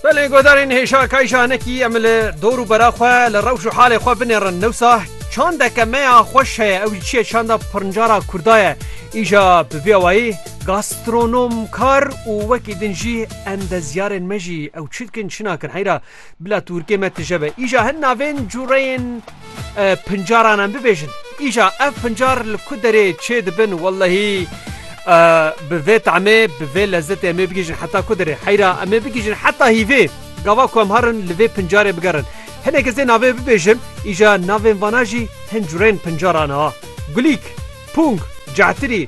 Belê godarên hêşa kayşa nekî em li dor û bera xwe li rewş û halê xwe binêrin. Newsa çandeke me ya xweş heye ew jî çiye çanda pirncara kurda ye. Îja bi vî awayî gastronomkar û wekî din jî endezyarên me jî ew çi dikin çi nakin heyra. Bila Tûrkê me tije be. Îja hin navên cureyên pincaran em bibêjin. Îja ev pincar li ku derê çê dibin wellehî bi vê temê bi vê lezzetê em ê bigihîjin heta ku derê heyra em ê bigihîjin heta hîvê gava ku em herin li vê pincarê bigerin. Hinek ez ê navê bibêjim îja navên vana jî hin cureyên pincaran a. Gulîk, pûng, cehtirî,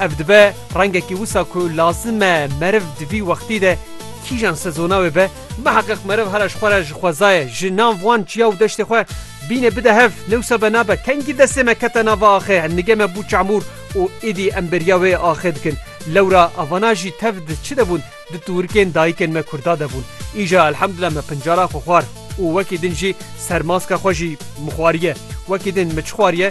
Ev dibe rengekî wisa ku lazim e meriv di vî wextî de kîjan sezona wê be. Biheqîq meriv here ji xwe re ji xwezayê, ji nav wan çiya û deştê xwe bîne bide hev. Newsa be nabe kengî destê me kete nav a axê, nigê me bû çamûr û êdî em bêriya wê axê dikin. Lewra avana jî tev di çi de bûn? Di tûrikên dayikên me kurda de bûn. Îja elhemdullah me pincara xwe xwar û wekî din jî sermaska xwe jî mixwariye. Wekî din mi çi xwariye?